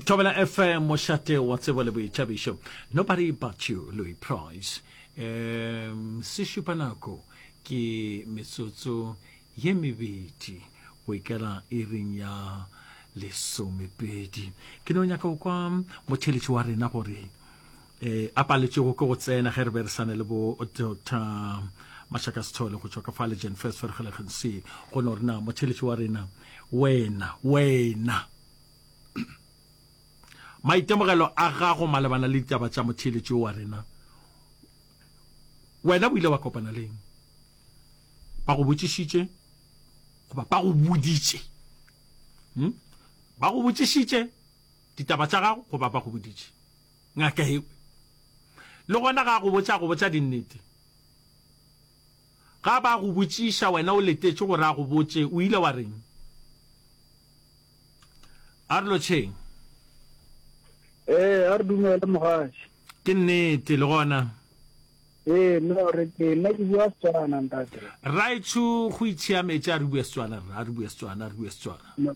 Tobela FM mošate wa tsebo le boitšhabišo nobody but you Louis Price um, se šupa nako ke metsotso ye mebedi go ikela iring ya lesomepedi ke no nyaka go kwa motheletši wa rena gore e a paletšego ke go tsena ge re be re sane le bo dr mashaka sethole go tšwa ka fa legend first fergelegeng se go no rena motheletši wa rena wena wena maitemogelo a gago malebana le ditaba tša motheletši wa rena wena o ile wa kopana leng ba go botšišitše goba ba go boditše hmm? ba go botšišitše ditaba tša gago goba ba go boditše Ngaka ye le gona ga go botša go botša dinnete. Ga ba go botšiša wena o letetše gore a go botše o ile wa reng. A re lotšheng. Ee, a re dumele mogatši. Ke nnete le gona. Ee, no re ke nna ke bua Setswana ntate. Rraetsho go itshiametše a re bue Setswana rra, a re bue Setswana, a re bue Setswana.